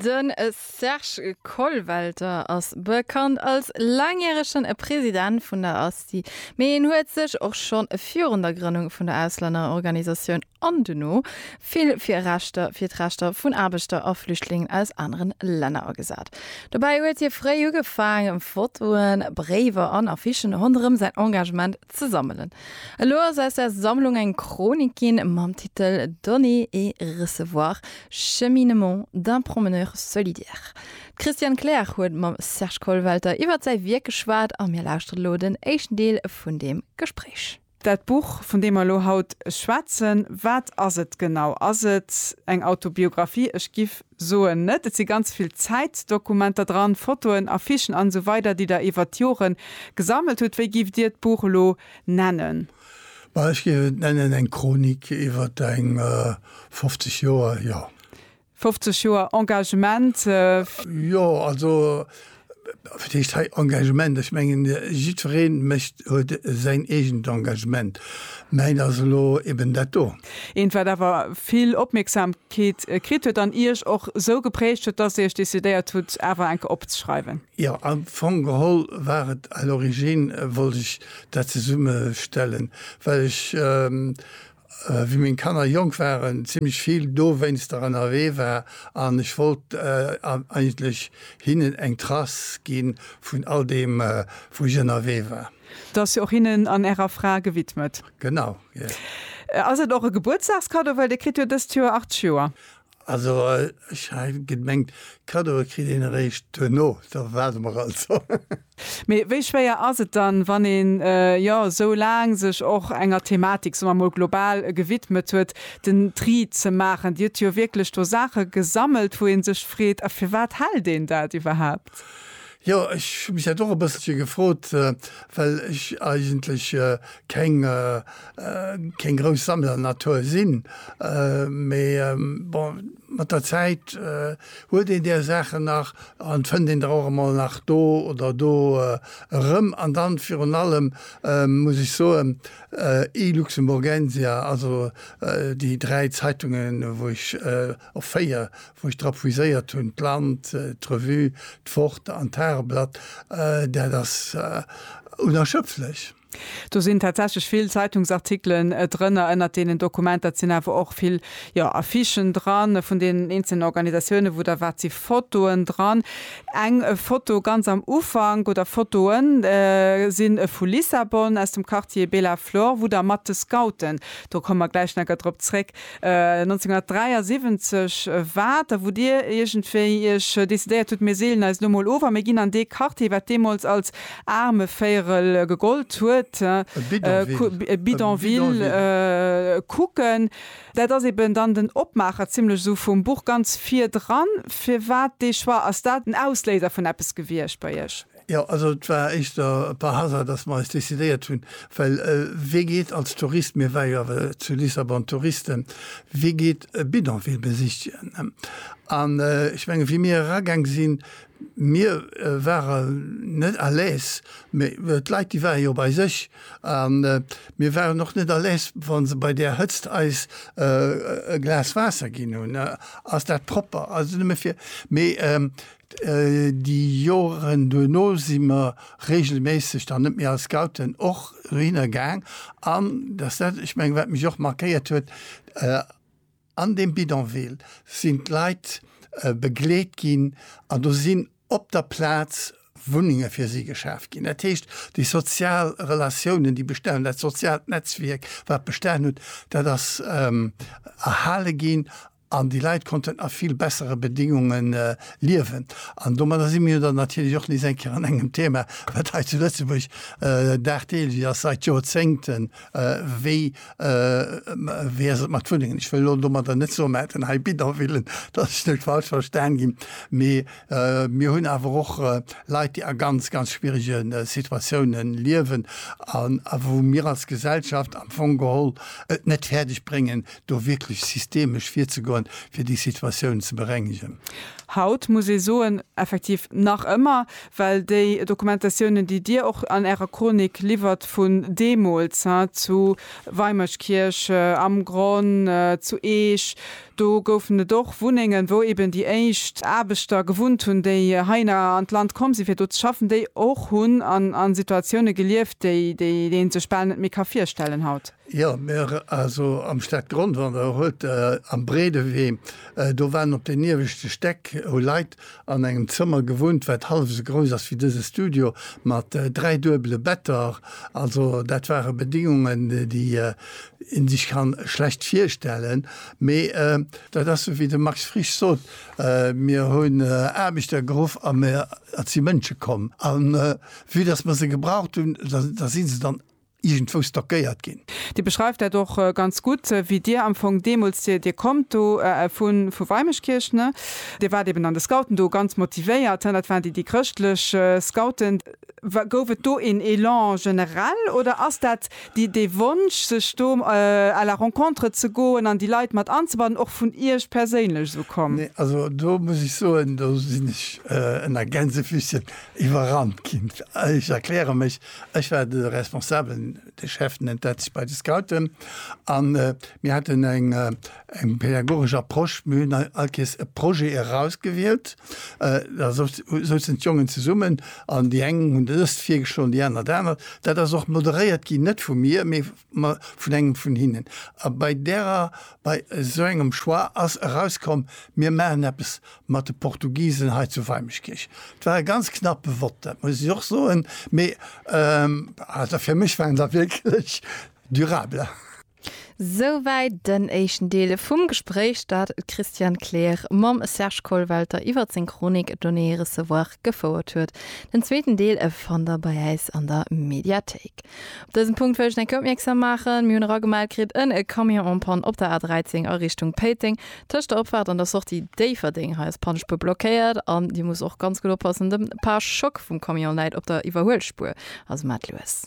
De Serge Kollwelter ass bekannt als laangjärege President vun der ASTI, mee en huet sech och schonn virun der Grënnung vun der Auslännerorganisatioun an duerno vill fir Rechter, fir d'Rechter vun Aarbechter a Flüchtlingen aus anere Länner agesat. Dobäi huet hie fréi ugefaangen, Fotoen, Bréiwer an Affichen ronderëm säin Engagement Ze sammelen. Elo ass aus der Sammlung eng Chronik ginn mam Titel Donner et recevoir, cheminement d'un promeneur solidaire. D'Christiane Kleer huet mam Serge Kollwelter iwwert säi Wierk geschwat a mir lauschteren elo den éischten Deel vun deem Gespréich. Dat Buch, vun deem mer elo haut schwätzen, wat ass et genau? Ass et eng Autobiographie? Ech giff Soen net, et si ganz vill Zäitdokumenter dran, Fotoen, Affichen an esou weider déi der iwwert d'Jore gesammelt hutt. Wéi giff dir d'Buch elo nennen? Ma ech géif et nennen eng Chronik iwwert eng 50 Joer, jo. 50 Joer Engagement. Jo, also Hei Engagement ech mengen jiddweree mécht huet säin eegent Engagement. Mäin ass elo eben dat do. Eent, wat awer vill Opmierksamkeet kritt huet an Iech och esou geprägt huet, datt Dir Iech decidéiert hutt, awer eng Kéier opzeschreiwen. Jo, am Fong geholl war et à l'origine wollt ech dat zesummestellen, well ech Wéi meng Kanner jonk waren, zimmlech vill dowéinster ënnerwee war an ech wollt eigentlech hinnen eng Trace gi vun all deem, wou ech ënnerwee war. Dat ass jo och hinnen an ärer Fra gewidmet. Genau, jo. Ass et och e Gebuertsdagskaddo, well Dir kritt jo dëst Joer 80 Joer? Also ech hat gemengt Cadeaue kritt een eréischt duerno, da waarde mer also. Mee wéi schwéier ass et dann, wann een jo esou laang sech och enger Thematik, soe mer emol global, gewidmet huet, den Tri ze maachen? Dir hutt jo wierklech do Saache gesammelt, wou ee sech freet, a firwat hält een dat iwwerhaapt? Jo, ech hu mech dat och e bësselche gefrot, well ech eigentlech keng keng grouss Sammlernatur sinn. Mee bon, mat der Zäit huet een där Saachen nach an fënnt een der och emol nach do oder do erëm. An dann virun allem muss ech soen, iLuxemburgensia, also déi dräi Zeitungen, wou ech Och 4, wou ech drop viséiert hunn, d'Land, d'Revue, d'Fort an d'Tageblatt, dat ass unerschöpflech. Do sinn tatsächlech vill Zeitungsartikelen drënner. Ënnert deenen Dokumenter sinn awer och vill, jo, Affichen dran vun deenen eenzelnen Organisatiounen, wou der waart, si Fotoen dran. Eng Foto ganz am Ufank, oder Fotoen, si vu Lissabon, aus dem Quartier Bela Flor, wou der mat de Scouten, do komme mer gläich nach drop zréck, 1973 war et da, wou Dir iergendwéi Iech decidéiert hutt, mir seelen eis elo mol of a mir ginn an dee Quartier, wat deemools als Aarmevéierel gegollt huet, e Bidonville, kucken. Dat ass eben dann den Opmaacher zimlech esou vum Buch ganz virdran. Firwat dee Choix? Ass dat en Ausléiser vun eppes gewiescht bei Iech? Jo, also et war éischter par hasard, dass mer eis decidéiert hunn, well wee geet als Tourist, mir ware jo awer zu Lissabon Touristen, wee geet e Bidonville besichtigen? An ech menge wéi mir eragaang sinn, mir ware net à l'aise, mä d'Leit déi ware jo bei sech a mir waren och net à l'aise, wa se bei där Hëtzt eis e Glas Waasser ginn hunn, ass dat propper, also nëmme fir, mee Déi Joren duerno si mer reegelméisseg dann net méi als Scouten och dohinner gaang. An dat ass dat, ech mengen, wat mech och markéiert huet, An deem Bidonville sinn d'Leit begleet ginn an do sinn op der Plaz Wunnenge fir si geschaf ginn. Dat heescht, déi sozial Relatiounen, déi bestanen hunn, dat soziaalt Netzwierk, wat bestanen huet, dat ass erhale ginn An déi Leit konnten a vill bessere Bedingunge liewen. An domadder si mir jo dann natierlech och nees eng Kéier an engem Thema, wat hei zu Lëtzebuerg dagdeelech ass, seit Jorzéngten, wéi ass et mat Wunnengen? Ech wëll elo domadder net soen, mir hätten hei Bidonvillen, dass ech net falsch verstan ginn, mee mir hunn awer och Leit, déi a ganz, ganz schwierege Situatioune liewen a wou mir als Gesellschaft am Fong geholl et net fäerdeg bréngen, do wierklech systemesch virzegoen, fir déi Situatioun ze berengegen. Haut muss ee soen, effektiv nach ëmmer, well déi Dokumentatiounen, déi Dir och an Ärer Chronik liwwert vun deemools, he, zu Weimerskirch, am Gronn, zu Eech, do goufen et och Wunnengen, wou eben déi éischt Aarbechter gewunnt hunn, déi heihinner an d'Land komm sinn, fir do ze schaffen, déi och hunn an Situatioune gelieft, déi een sech bal net méi ka virstellen haut. Jo, mir, also am Stadgrondwall, da huet Der am Bredewee, do waren op den ieweschte Stäck, hu Leit an engem Zëmmer gewunnt, wat hallef esou grouss ass wéi dëse Studio, mat dräi duebele Better. Also dat ware Bedingungen, déi ee sech ka schlecht virstellen. Mee dat ass esou wéi de Max Frisch sot, Mir hunn Aarbechter geruff a mir, et si Mënsche komm. A vue dass mer se gebraucht hunn, da si se dann iergendwou stockéiert ginn. Dir beschreift dat och ganz gutt, wéi Dir am Fong deemools, Dir, Dir kommt do vu vu Weimeschkierch, ne? Dir waart eeben an de Scouten do ganz motivéiert, dat waren déi, déi chrëschtlech Scouten. Wa gouf et do een Elan generell oder ass dat déi, dee Wonsch, sech do à la rencontre ze goen an déi Leit mat anzebannen, och vun Iech perséinlech esou komm? Nee, also do muss ech soen, do sinn ech ënner Gänsefüßchen iwwerrannt ginn. Ech erkläre mech, Ech war de Responsabelen, de Chef nennt dat sech bei de Scouten. An mir haten eng pädagogesch Approche. Mir hunn all Kees e Projet erausgewielt. Da souzen d'Jongen zesummen an déi eng hunn dëst virgeschloen, déi aner dat anert. Dat ass och moderéiert ginn, net vu mir, mee Mä vun engem vun hinnen. A bei därer, bei esou engem Choix ass erauskomm, mir maachen eppes mat de Portugisen hei zu Weimeschkierch. Et war e ganz knappe Vott, dat muss ech och soen, mee also fir mech waren se wierklech durable. Souwäit den éischten Deel vum Gespréich, dat d'Christiane Kleer mam Serge Kollwelter iwwer seng Chronik Données et recevoirs gefouert huet. Den zweeten Deel fannt der bei äis an der Mediathéik. Op dësen Punkt wëll ech nach eng Kéier opmierksam maachen, Mir hunn eragemellt kritt en e Camion en panne op der A13 a Richtung Péiteng, tëscht der Opfaart an der Sortie Déifferdeng. Hei ass d'Pannespuer blockéiert an Dir musst och ganz gutt oppassen, de Parschock vum Camion läit op der Iwwerhuelspuer, also maacht lues.